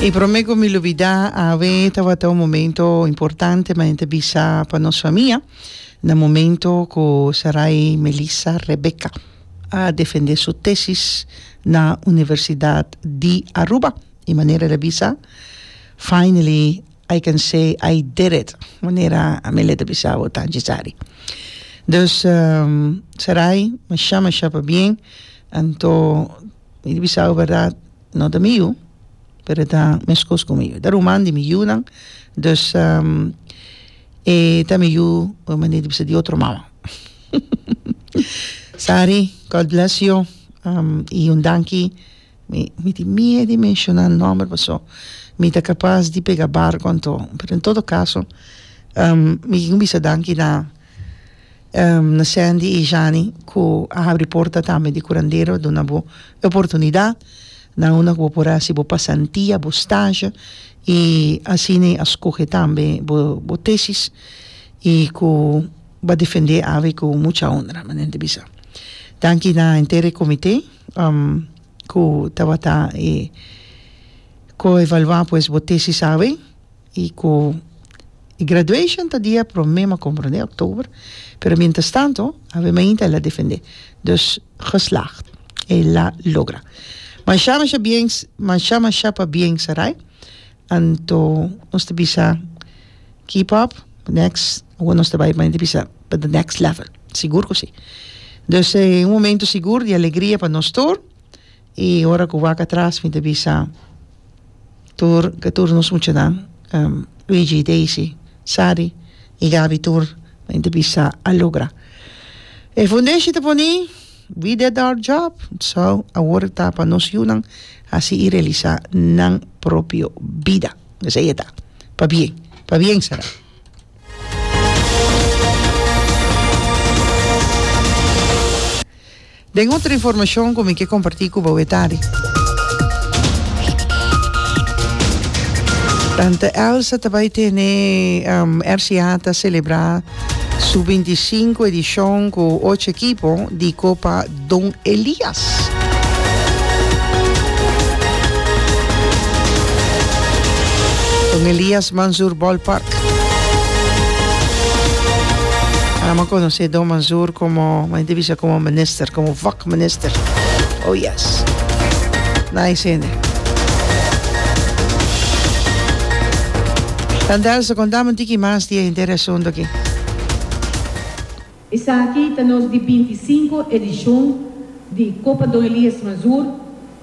E prome cu mi lubida awe tawata un momento importante ma enta bisa pa nos famia na momento cu Sarai Melissa Rebecca a defende su tesis na Universidad di Aruba y manera el a bisa finally I can say I did it manera Amelia ta bisa awe ta necesari dus Sarai masha masha pabien anto Mi di bisao bèrdat no ta mi yu pero e ta meskos ku mi yu e ta ruman di mi yunan dus e ta mi yu un manera di bisa di otro mama sari God bless you i un danki mi tin miedu di menshona nòmber paso mi ta kapas di pega barko anto pero en todo kaso mi kin bisa danki na Na Sandy y Jani cu a habri porta tambe di curandero duna bo e oportunidad nan una cu bo por haci bo pasantia bo stage y asina a scoge tambe bo bo tesis y cu ba defende awe cu mucha honra manera te bisa danki na enter e comite cu tabata e coevalua pues bo tesis awe I ku e graduation ta dia prome m'a komprondé, oktober, pero mientras tanto Ave Mainta el a defendé. Dus geslaagd. El a logra. Masha masha bien masha masha pa bien Sarai. Anto nos ta bisa keep up next awor nos ta bai mane ta bisa pa the next level. Sigur ku si. Dus e un momento sigur di alegria pa nos tur. i ora ku wak atras mi ta bisa tur ke tur nos muchanan Luigi i Daisy Sari i Gabi tur mi ta bisa a logra e fundeshi ta poni we did our job so awor ta pa nos yunan hasi i realisa nan propio bida esei e ta pa bien pa bien será. Den otro informacion cu mi ke comparti cu bo e tarde. Tante Elsa ta bay tene RCA ta celebra su binti i sinku edicion cu ocho ekipo di copa Don Elias. Don Elias Mansour Ballpark. Anan a conoce Don Mansour como, m'a inte bisa como minister, como vak minister. Oh yes. Nice hende. Tandelse, contamen un tiki mas di e henter e asunto aki. Esaki ta nos di binti i sinku edishon di Copa Don Elias Mazur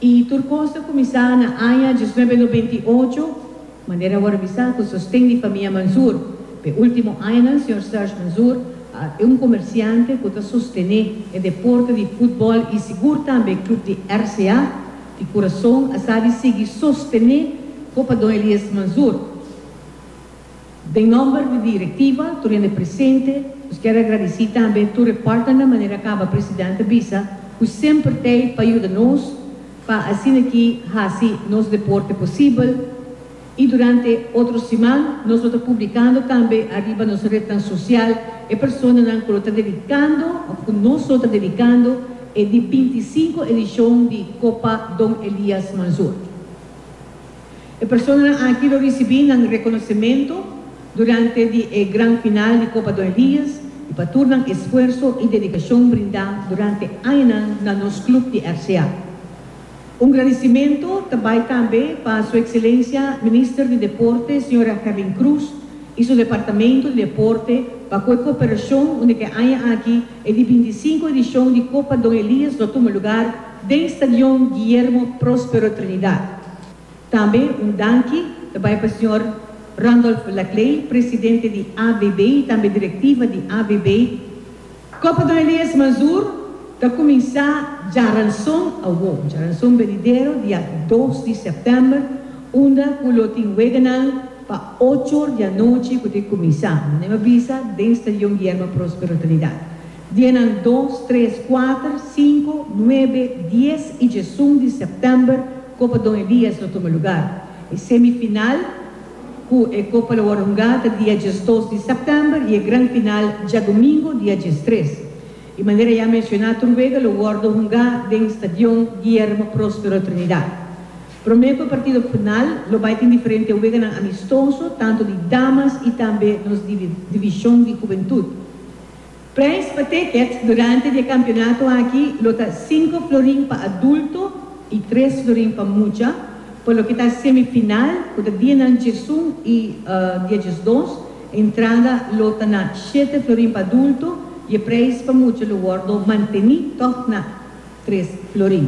i tur kos ta kuminsá na aña diesnuebe nobenta i ocho, manera awor a bisa ku sosten di famia Manzur. Pa e último añanan señor Serge Manzur a e un komersiante ku ta sostené e deporte di futbòl i sigur tambe e klub di RCA di Kurason a sa di sigui sostené Copa Don Elias Manzur. Den nomber di directiva, tur hende presente, nos kier agradeci tambe tur e partnernan manera caba President a bisa cu semper t'ey pa yuda nos pa asina aki haci nos deporte posibel y durante otro siman nos lo ta publicando tambe ariba nos rednan social e personanan cu lo ta dedicando of cu nos lo ta dedicando e di binti i sinku edicion di Copa Don Elias Manzur. E personanan aki lo risibí nan rekonosementu durante di e gran final di Copa Don Elias i pa tur nan esfuerso i dedikashon brindá durante añanan na nos klub di RCA. Un gradisimentu ta bai tambe pa Su Ekselencia Minister di Deporte señora Herlin Cruz i su Departamento di Deporte pa ku e koperashon unda ku e aña aki e di binti i sinku edishon di Copa Don Elias lo tuma lugar Den Stadion Guillermo Prospero Trinidad. Tambe un danki ta bai pa señor Randolph Laclay, presidente di AVB y tambe directiva di AVB. Copa Don Elias Mazur ta cuminsa djaranzon awo, djaranzon benidero dia dos di september, unda cu lo tin weganan pa ocho or di anochi cu ta cuminsa, manera a bisa, den Stadion Guillermo Prospero Trinidad. Dienan dos, tres, kuater, sinku, nuebe, dies i djesun di sèptèmber Copa Don Elias lo tuma lugar. E semifinal ku e kopa lo wòrdu hungá ta dia djesdos di sèptèmber i e gran final djadumingu dia djestres. Di manera ya menshoná tur wega lo wòrdu hungá den stadion Guillermo Prospero Trinidad. Promé ku e partido final lo bai tin diferente weganan amistoso tantu di damas i tambe nos divishon di hubentud. Prijs pa tickets durante di e kampionato aki lo ta sinku florin pa adulto i tres florin pa mucha pa loke ta semifinal ku ta dia nan djesun i dia djesdos. Entrada lo ta na shete florin pa adulto i e prijs pa mucha lo wòrdu manteni tòg na tres florin.